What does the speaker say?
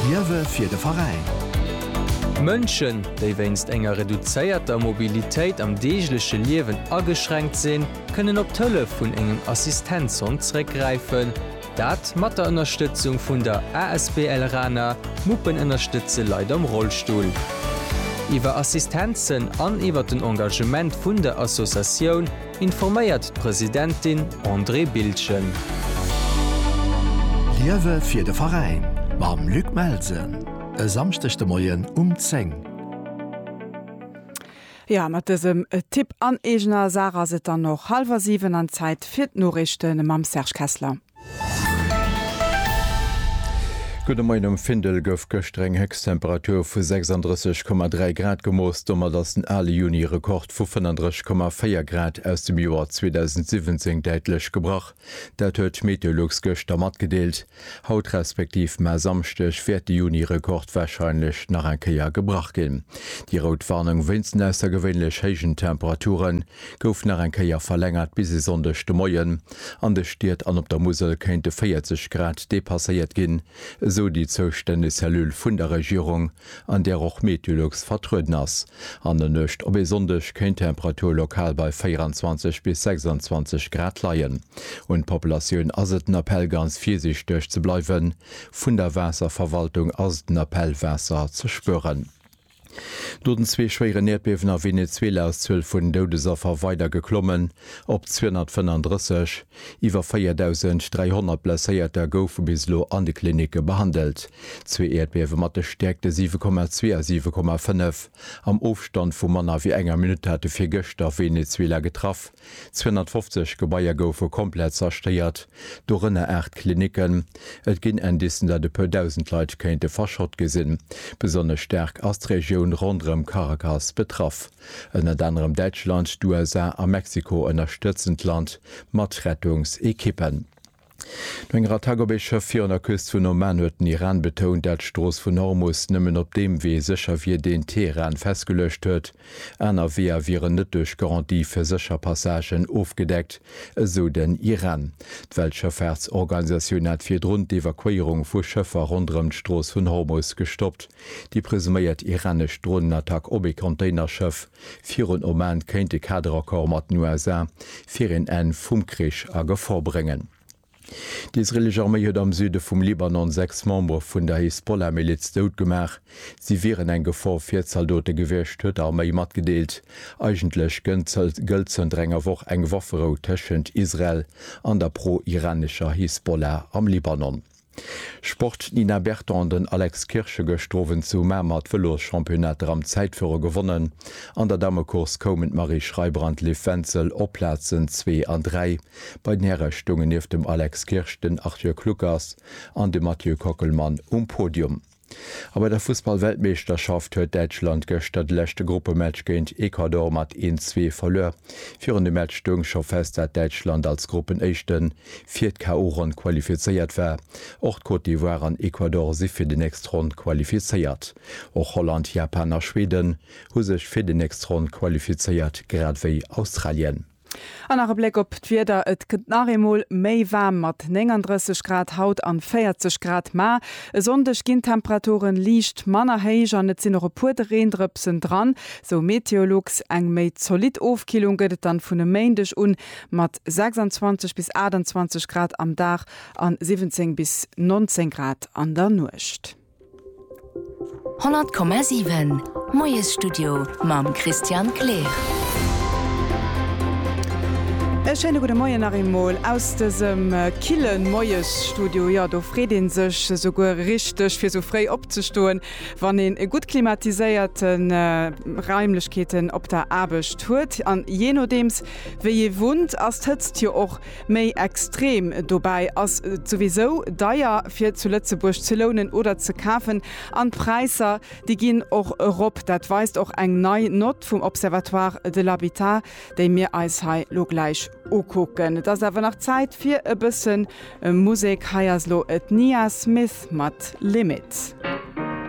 Liewe fir de Veräin. Mënschen, déi wéinst enger reduzéierter Mobilitéit am deegleche Liewen ageschränkt sinn, kënnen op d'Hëllef vun engem Assistenzhond zréckgräifen. Dat mat der Ënnerstëtzung vun der asbl Rana, Muppen ënnerstëtze Leit am Rollstull. Iwwer Assistenzen an iwwer den Engagement vun der Associatioun informéiert d'Presidentin Andrée Bildgen. Liewe fir de Veräin mam Luc Melsen e Samschdeg de Moien um 10. Jo, mat dësem Tipp an eegener Saach ass et dann och hallwer 7 an Zäit fir d'Noriichte mam Serge Kessler. Gudde Moien, Um Findel gouf gëschter eng Héchsttemperatur vu 36,3 Grad gemooss. Domat ass den ale Juni-Rekord vu 35,4 Grad aus dem Joer 2017 däitlech gebrach. Dat huet d'Meteolux gëschter matgedeelt. Haut, respektiv mar Samschdeg, wäert de Juni-Rekord warscheinlech nach eng Kéier gebrach ginn. Déi rout Warnung wéinst den aussergewéinlech héijen Temperaturen gouf nach eng Kéier verlängert bis e Sonndeg de Moien. An de Stied an op der Musel kéinte 40 Grad depasséiert ginn, esou déi zoustänneg Cellule vun der Regierung, an där och Meteolux vertrueden ass. An der Nuecht op e Sonndeg kéint d'Temperatur lokal bei 24 bis 26 Grad leien. Un d'Populatioun ass et den Appell ganz virsiichteg ze bleiwen. Vun der Waasserverwaltung ass den Appell, Waasser ze spueren. No den zwee schwéieren Äerdbiewen a Venezuela ass d'Zuel vun Doudesaffer weider geklommen op 235. Iwwer 4.300 Blesséierter goufe bis elo an de Klinicke behandelt. Zwee Äerdbiewe mat de Stäerkte 7,2 a 7,5 am Ofstand vu manner wéi enger Minutt hate virgëschter Venezuela getraff. 250 Gebaier goufe komplett zerstéiert, dorënner aacht Klinicken. Et ginn Indicen, datt e puer Dausend Leit kéinte verschott gi sinn. Besonnesch staark ass d'Regioun ronderëm Caracas betraff. Ënnert anerem Däitschland, d'USA a Mexiko ënnerstëtzen d'Land mat Rettungsekippen. No enger Attack op ee Schëff virun der Küst vun Oman huet den Iran betount, dat d'Strooss vun Hormus nëmmen op deem Wee sécher wier, deen Teheran festgeluecht huet. Aner Weeër wieren net duerch Garantie fir sécher Passagen ofgedeckt, esou den Iran. D'Weltschëffaartsorganisatioun hat virdrun d'Evakuéierung vu Schëffer ronderëm d'Strooss vun Hormus gestoppt. Déi presuméiert iranesch Dronenattack op ee Containerschëff, Virun Oman kéint e Kaderaccord mat den USA fir een Enn vum Krich a Gefor bréngen. D'israelesch Arméi huet am Süde vum Libanon sechs Membere vun der Hisbollah-Miliz dout gemaach. Si wieren eng Gefor fir d'Zaldote gewiescht, huet d'Arméi matgedeelt. Eigentlech gëllt zënter enger Woch eng Wafferou tëschent Israel an der pro-iranescher Hisbollah am Libanon. Sport, D'Nina Berton an den Alex Kirsch hu gëschter Owend zu Mamer d'Vëloschampionnat am Zäitfuere gewonnen. An der Damecourse koumen d'Marie Schreiber an d'Liv Wenzel op d'Plazen zwee an dräi. Bei den Häre stoungen nieft dem Alex Kirsch den Arthur Kluckers an de Mathieu Kockelmann um Podium. A bei der Fussballweltmeeschterschaft huet Däitschland gëschter de leschte Gruppematch géint Ecuador mat 1, 2 verluer. Virun dem Match stoung scho fest, dat Däitschland als Gruppenéischte fir d'KO-Ronn qualifizéiert war. Och d'Côte d'Ivoire an Ecuador si fir déi nächst Ronn qualifizéiert. Och Holland, Japan a Schweden hu sech fir déi nächst Ronn qualifizéiert, grad wéi Australien. An nach e Bléck op d'Wieder, Et gëtt nach eemol méi waarm mat 39 Grad haut an 40 Grad. Mä e Sonndeg ginn d'Temperaturen liicht manner héich an et sinn och e puer de Reendrëpsen dran, sou Meteolux. Eng méi zolidd Ofkillung gëtt et dann vun e Méindeg un mat 26 bis 28 Grad am Dag an 17 bis 19 Grad an der Nuecht. 100,7 Moiesstudio mam Christian Kleer. E schéine gudde Moien nach eemol aus dësem kille Moiesstudio. Jo, do freet ee sech esouguer richteg, fir esou fréi opzestoen, wann een e gutt klimatiséierte Raimlechkeeten op der Aarbecht huet. An jee nodeems, wéi ee wunnt, ass d'Hëtzt jo och Méi extrem dobäi ass, et souwisou deier fir zu Lëtzebuerg ze lounen oder ze kafen an d'Präisser, déi ginn och erop. Dat weist och eng nei Nott vum Observatoire de l'habitat, déi mir eis hei lo gläich ukucken. Et ass awer nach Zäit fir e bësse Musek. Hei ass lo d'Nia Smith mat Limit.